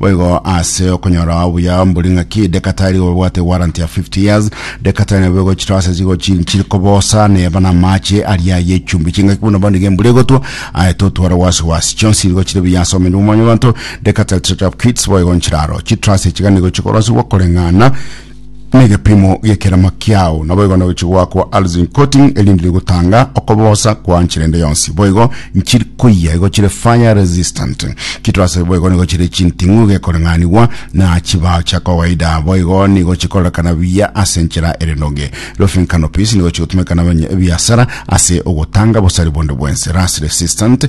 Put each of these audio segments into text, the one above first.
Boigo ase okonyora obuya mbori ng'aki dekatari obwate warranty ya 50 years dekatari nabo egochira ase chigochi chiri kobosa neba na amache aria ye chumbi chingaki buna bande gembura egotwa aye totwara wasi wasi chionsi nigo chire biya ase omene omwanya obanto dekatari trade up kits boigo nchiraro chitrase chigane gochikora ase gwa koreng'ana n'egepiimo giekerama kiao, naboigo nogochi gwakwa Alzin Coating erinde rigotanga okobosa kwa nchire ende yonsi. Boigo nchiri koyia igo chire fire resistant. Kitorase boigo nigo chire chinting'u gekoreng'anigwa na chibao chia kawaida. Boigo nigo chikorerekana buya ase enchera ere noge. Roofing canopies nigo chigotumeka na ebiasara ase ogotanga bosari bonde bwense. Rust resistant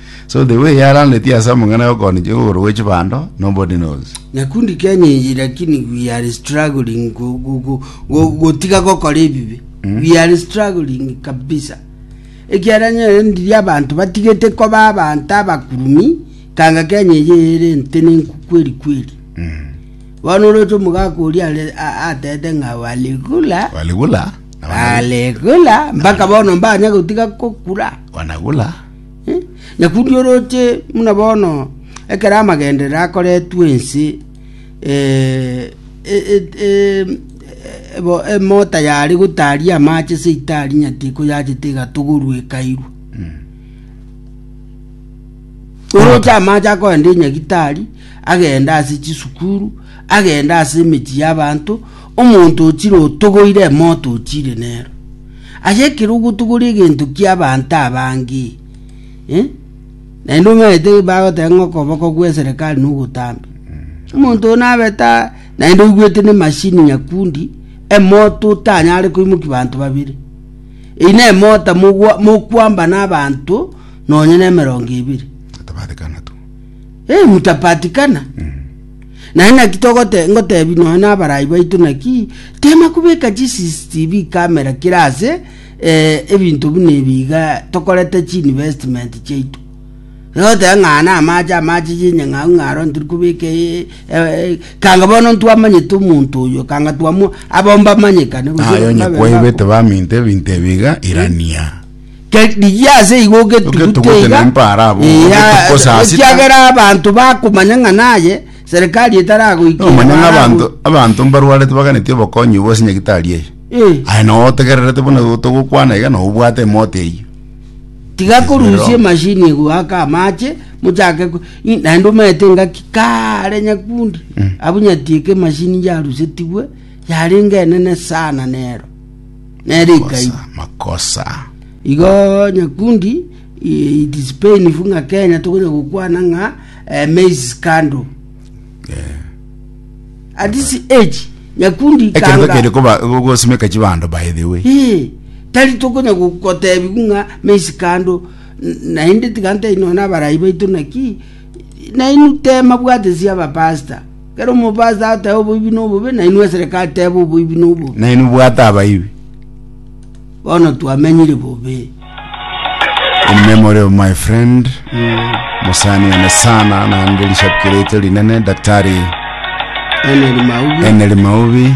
So the way yarandetie ase amang'ana y'okooni chigokoro gwe chibando, nobody knows. Nyakundi Kenya eye lakini we are struggling go- go- go- go- gotiga gokora ebibe we are struggling kabisa ekiara nyere ndiri abanto batigete koba abanto abakurumi kanga Kenya eye ere ntene nkukweri kweri bono oroche omogaka oria are- a- atete ng'a waligula Waligula, na wana- waligula mpaka bono mbanya gotiga kokura wanagula. Nakundi oroche buna bono, ekero amagenderero akoretwe ense, emota yare gotaria amache ase itaari nyati koyachete egatogorwa ekairwa. Oroche amache akoenda enyagitari, agenda ase chisukuru, agenda ase emechie y'abanto. Omonto o chire otogoire emoto o chire nero. Ase ekero ogotogoria egento ki'abanto abange, eh, naende omanyete bagoteba ng'a okoboko gw'eserekari nogotambe. Omonto oo nabe ta naende oigwete ne machine nyakundi, emoto otanyare koimokia banto babere. Eyi na emota mogwa- mokwamba na abanto nonye na emerongo ebere. Atabarekana tu. Eh, mtapatikana. Naende naki togote ngotebi nonya nabarai baito naki tema kubeka chi CCTV camera kira ase eh, ebinto buna ebi iga tokorete chi investment chiaito. Egoteba ng'a na amache amache yenye ng'au ng'aro ntiri kubeka eh, eh, kanga bono ntwamanyete omonto oyo kanga twamwa abo mbamanyekane gose Aye onye babe kwaibete baku- baminto ebinto ebiga irania. Ke- rigia ase igo ogetugute Ogetugute iga, na mpara abo, iya, ogetukosa asita. ekiagera abanto bakomanya ng'a naye serikali etaragoikera omanya ng'a barago- abanto abanto mbarwarete baganeti obokonyi obwo ase nyagitari eye Eh, aye nao otegererete buna togokwana iga nao obwate emote eyio tiga korusia Roho. emashini egoaka amache mochake ko- i- naende omanyete ngaki kare nyakundi Mm. abunyatieka emashini yarusetigwe yarenge enene sana nero nere ikaibu makosa igo nyakundi i- it is painful ng'a kenya tokonya gokwana ng'a eh, maize scandal at this age nyakundi ekerito kanga- kende koba gosimeka chibando by the way Eh, tari tokonya gotebi ng'a maize scandal N- naende tiga ntari nona abarai baito naki nainu tema bwate sia abapasta Ekero omobaso ateba oboibi nobobe, na inwe esereka ateba oboibi nobobe. Na inwe bwate abaibi. Bono twamenyire bobe. In memory of my friend mosani one sana naende rishabiki riaito rinene daktari Eneri maubi. Eneri Maubi.